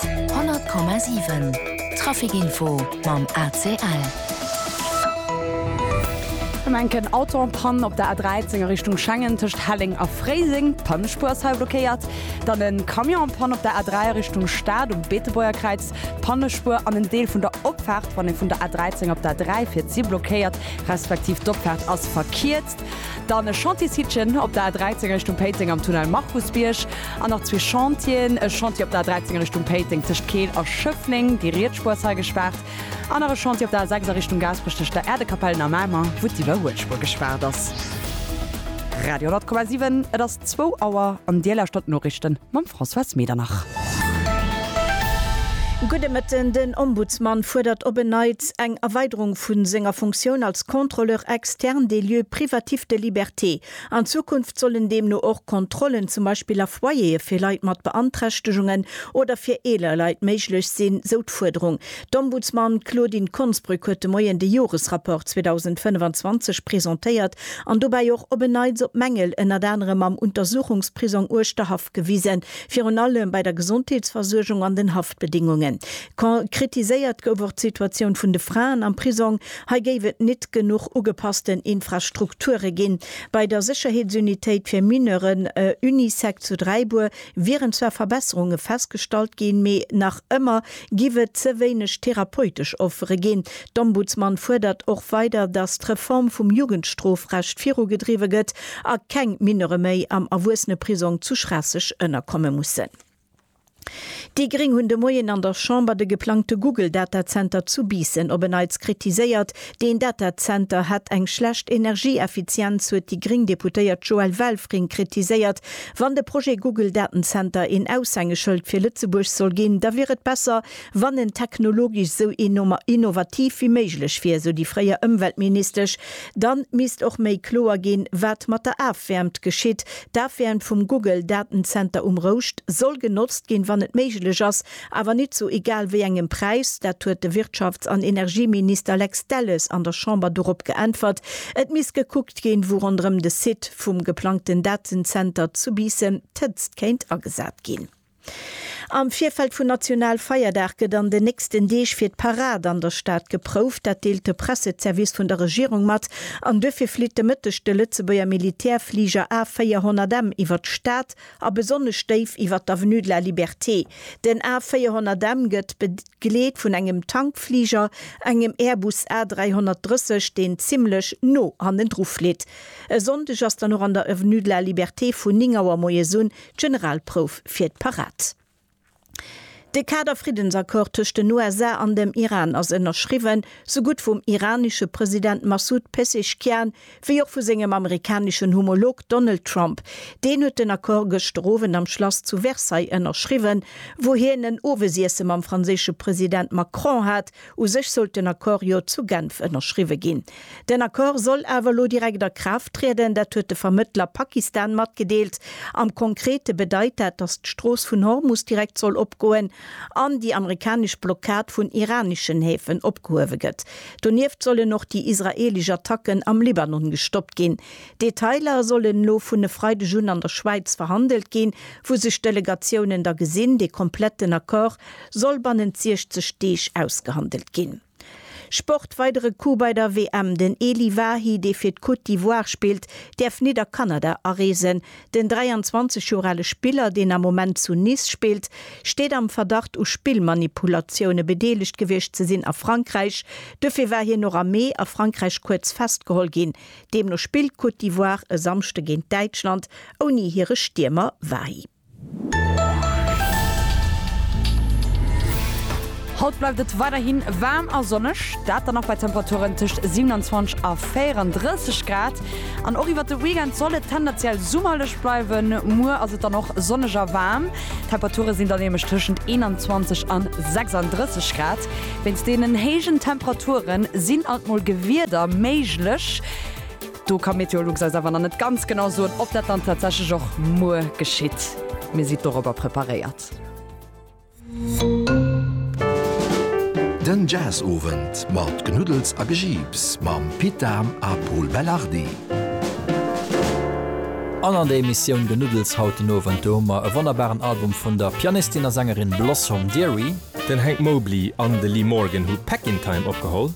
100,7 Trafic info mam ACL. Ëm enken Auto en panne op der A13 a Richtung Schengen tëscht Helleng a Fréiseng, d'Pannespuer ass hei blockéiert. Dann e Camion en panne op der A3 a Richtung Stad um Beetebuerger Kräiz, d'Pannespuer an en Deel vun der Opfaart wann ee vun der A13 op d'A3 fiert si blockéiert, respektiv d'Opfaart ass verkiert. Fest. Dann e Chantiers-Hittchen op der A13 Richtung Péiteng am Tunnel Markusbierg. An nach zwee Chantieren, e Chantier op der A13 Richtung Péiteng tëscht Keel a Schëffleng, déi riets Spuer ass hei gespaart. An nach e Chantier op der A6 a Richtung Gaasperech tëscht der Äerdekapellen a Mamer, wou d'Iwwerhuelspuer gespaart ass. Radio 100,7 Et ass. Zwou Auer an Dir lauschtert d'Noriichten mam Françoise Medernach. Gudde Mëtten, Den Ombudsman fuerdert op en Neits eng Erweiderung vu senger Funktioun als Contrôleur externe des lieux privatifs de liberté. An Zukunft sollen deemno och Kontrollen zum Beispill a Foyer'e fir Leit mat Beanträchtegungen oder fir eeler Leit méiglech sinn, sou d'Fuerderung. D'Ombudsman Claudine Konsbrück huet de Moien de Joresrapport 2025 presentéiert An dobäi och op en Neits op Mängel ënnert anerem am Untersuchungsprisong Uerschterhaff gewisen, virun allem bei der Gesondheetsversuergung an den Haftbedingungen. Kon kritiséiert gouf och d'Situatioun vun de Fraen am Prisong. Hei géif et nit genuch ugepassten Infrastrukture ginn. Bei der Sécherheetsunitéit fir Mineuren, Unisec zu Dräibuer, wieren zwar Verbesserunge festgestallt ginn, mee nach ëmmer giff et ze wéineg therapeutesch Offere ginn. D'Ombudsman fuerdert och weider, datt d'Reform vum Jugendstrofrecht virugedriwwe gëtt a keng Mineure méi am Erwuesseneprisong zu Schraasseg ënnerkomme mussen. Déi Gréng hunn de Moien an der Chamber de geplangte Google-Datazenter zu Biissen op en Neits kritiséiert, Deen Datazenter hätt eng schlecht Energieeffizienz, huet déi gréng Deputéiert Joëlle Welfring kritiséiert. Wann de Projet Google Datenzenter een Aushängeschëld fir Lëtzebuerg soll ginn, da wier et besser, wann en technologesch esou innovativ wéi méiglech wier, esou déi fréier Ëmweltministesch. Dann misst och méi kloer ginn, wat mat der Afwäermt geschitt. D'Afwäermt vum Google Datenzenter um Rouscht soll genotzt ginn, wann et méiglech ass, Awer nit zu egal wéi engem Präis, dat huet de Wirtschafts an Energieminister Lex Delles an der Chamber dorop geäntwert, et misst gekuckt ginn, wou ronderëm de Site vum geplangten Datenzenter zu Biissen d'Hëtzt kéint agesat ginn. Am Virfeld vun National Feierdag gëtt an den nächsten Deeg fir d'Parad an der Stad geprouft, dat deelt de Pressezervice vun der Regierung mat. An duerfir flitt de Mëtteg de Lëtzebuerger Militärfliger A400M iwwert d'Stad. a besonnesch déif iwwer d'Avenue de la Liberté. Den A 400 M gëtt begleet vun engem Tankfliger, engem Airbus A330, deen zimmlech no hannendru flitt. E Sonndeg ass dann och an der Avenue de la Liberté vun 9 Auer moies un d'Generalprouf fir d'Parad. De Kader-Friddensaccord tëscht den USA an dem Iran ass ënnerschriwwen, sou gutt vum iranesche President Massoud Pezeshkian wéi och vu sengem amerikaneschen Homolog Donald Trump. Deen huet den Accord gëschter Owend am Schlass zu Versailles ënnerschriwwen, wou hien en Owesiesse mam franséische President Macron hat, U sech sollt den Accord jo zu Genf ënnerschriwwe ginn. Den Accord soll awer elo direkt a Kraaft trieden, dat huet de Vermëttler Pakistan matgedeelt. Am Konkrete bedeit dat, datt d'Strooss vun Hormus direkt soll opgoen an déi amerikanesch Blockad vun iraneschen Häfen opgehuewe gëtt. Donieft sollen och déi israeelesch Attacken am Libanon gestoppt ginn. Detailer sollen elo vun e Freideg un an der Schwäiz verhandelt ginn, wou sech d'Delegatiounen da gesinn. Dee kompletten Accord soll bannent 60 Deeg ausgehandelt ginn. Sport, Weidere Coup bei der WM, Den Elie Wahi, dee fir d'Côte d'Ivoire spillt, däerf nit a Kanada areesen. Den 23 Joer ale Spiller, deen am Moment zu Nice spillt, steet am Verdacht u Spillmanipulatioune bedeelegt gewiescht ze sinn a Frankräich. Dofir war hien och am Mee a Frankräich kuerz festgeholl ginn. Deemno spillt d'Côte d'Ivoire e Samschde géint Däitschland ouni hire Stiermer Wahi. Haut bleift et weiderhi waarm a sonneg, dat dann och bei Temperaturen tëscht 27 a 34 Grad. An och iwwert de Weekend soll et tendenziell summerlech bleiwen. Muer ass et dann och sonneg a waarm, d'Temperature sinn dann nämlech tëschent 21 an 36 Grad. Wéinst deenen héijen Temperaturen sinn alt mol Gewieder méiglech. Do ka Meteolux eis awer nach net ganz genau soen, ob dat dann tatsächlech och muer geschitt. Mir sidd dorobber preparéiert. Den Jazzowend mat Knuddels a Gejiips mam Pit Dahm a Pol Belardi. An an der Emissioun Genuddels haut den Owend, do hu mer e wonnerbaren Album vun der Pianistin a Sängerin Blossom Dearie. Den Hank Mobley an de Lee Morgan hu Peck in Time opgeholl.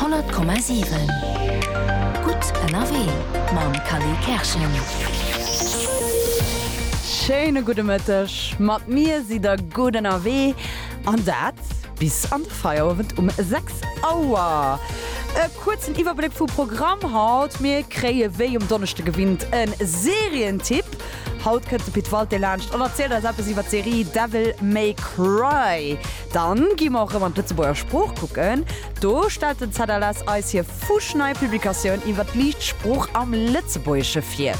100,7 Gutt ënnerwee mam Khalil Kerschen. Schéine gudde Mëtteg. Mat mir sidd der gutt ënnerwee an dat bis an de Feierowend um 6 Auer. E kuerzen Iwwerbléck vum Programm haut, Mir kréie wéi um Donneschde gewinnt e Serientipp. Haut kënnt de Pit Walté laanscht an erzielt eis eppes iwwer d'Serie Devil May Cry. Dann gi mer och rëm an d'Lëtzebuerger Sprooch kucken. Do stellt den ZLS eis hir fuschnei Publikatioun iwwert d'liicht Sprooch am Lëtzebuergesche vir.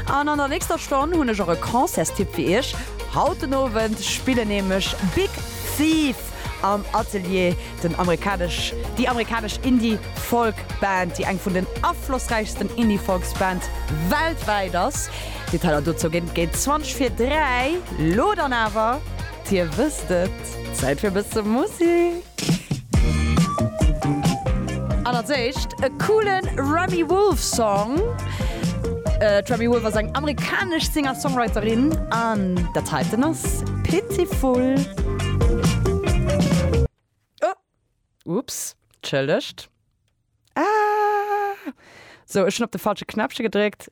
An an der nächster Stonn hunn ech och e Concertstipp fir iech. Haut den Owend spillen nämlech Big Thief am Atelier, den amerikanesch, déi amerikanesch Indie Folk Band, déi eng vun den aflossräichsten Indie Folks Band weltwäit ass. Detailer dozou géint 20 vir 3. Lo dann awer. Dir wësst et, Zäit fir e bësse Musik! An als éischt e coolen Remi Wolf Song. D'Remi Wolf ass eng amerikanesch Singer-Songwriterin an dat heiten ass Pitiful. Oh, ups, tschëllegt. Ah, sou ech hunn op de falsche Knäppche gedréckt.